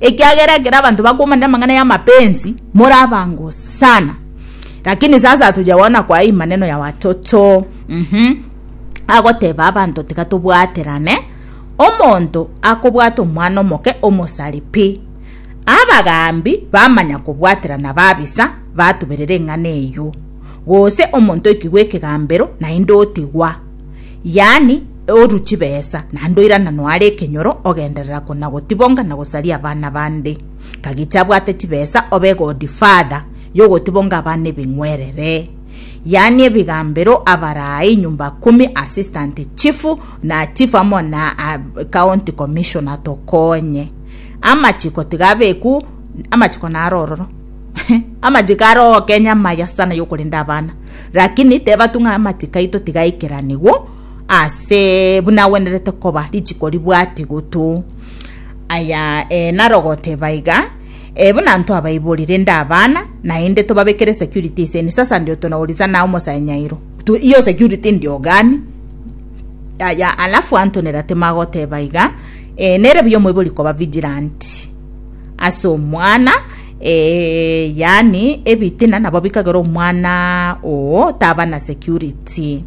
Ekiagera ekero abanto bakomanera amang'ana y'amapensi, more abango sana. Lakini sasa tochia goona kwa hii maneno ya watoto. Mhm. Agoteba abanto tiga tobwaterane. Omonto akobwata omwana omoke omosari pi. Abagaambi bamanya kobwaterana babisa batuberera eng'ana eyio. Gose omonto oikigwa ekegambero naende otigwa. Yaani, oru chibesa, naende oirana noare ekenyoro, ogenderera kona-gotibonga na gosaria abana bande. Kagicha abwate chibesa obe godfather y'ogotibonga abana ebing'werere. Yaani ebigambero, abarai, nyumba kumi, assistant chief, na chief amo na ah, county commissioner tokonye. Amachiko tiga abeku, amachiko naro ororo. amachiko aro ogokenya amaya sana y'okorenda abana. Rakini tebatu ng'a amachiko aito tigaikeranigwe ase buna agwenerete koba richiko ribwatigotu. Aya eh, narogote baiga eh, buna ntwabaiborire inde abana, naende tobabekere security ase ni sasa ndio tunauriza na omosae nyairo tu iyo security ndio gani aya alafu antonera timagoteba iga eh, nere buya omoibori koba vigilant ase omwana eh, yani ebitina nabo bikagera omwana oo taba na security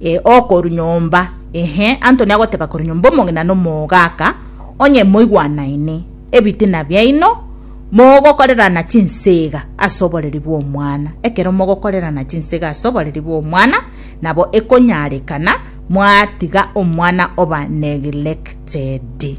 eh, okoru nyomba ehe antoni agoteba koru nyomba omong'ina nomogaka onye moigwanaine ebitina biaino mogokorerana chinsega ase oboreri bw'omwana ekero mogokorerana chinsega ase oboreri bw'omwana nabo ekonyarekana mwatiga omwana oba neglected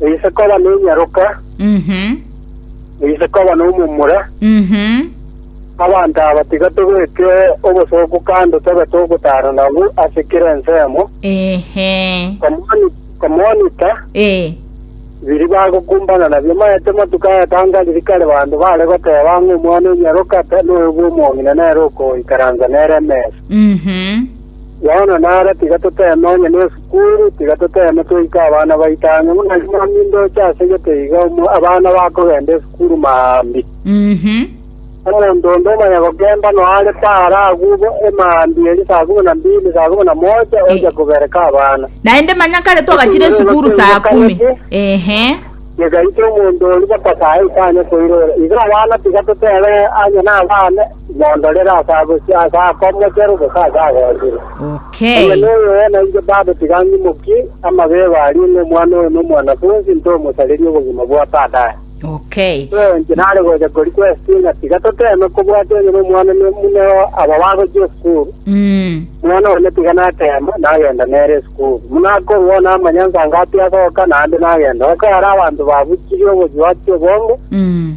Eise koba nenyaroka, Mhm. eise koba nomomura, Mhm. abanto aba tiga tobeke obosooku kando tobe togotara nabwo ase kera ensemo, Ehe. komoni- komonita Eh. biri bagokumbana nabio maete matuko ayatanga riri kare banto bare goteba ng'a omwana onyaroka te noyo bw'omong'ina nere okoikaransa nere emesa. Mhm. Yohana nare tiga toteeme onye nesukuru, tiga toteeme toika abana baito ang'e, buna ime momindoche ase gete iga omo abana bakogenda esukuru maambia. Omonto onde omanya gokemba noare paara agwo emaambia eria saa komi na mbili, saa komi na mocha, ocha kobereka abana. Naende manya kare twagachire esukuru saa kumi. Ehe. Tigaite omonto oria baka saa ita anye koirora. Iga abana tiga toteeme onye nabane, Mondorere ase abosio, ase akomochere, gose ase agochire. Okay. Omonyene oyo oo nainche Baba tiga ang'imokie amabego aria ng'a omwana oyo nomwanafunsi, ntomosarerie obogima bwa Tata aye. Okay. Ee, inche nare gocha korequestie ng'a tiga toteeme kobwatia onye nomwana ne- buna aba bagochia esukuru, Mm. omwana one tiga nateema nagenda nere esukuru. Buna akorua oo namanya nsangapi agoka, naende nagenda. Goka ere abanto babuchirie obochie bwachia obongo, Mm.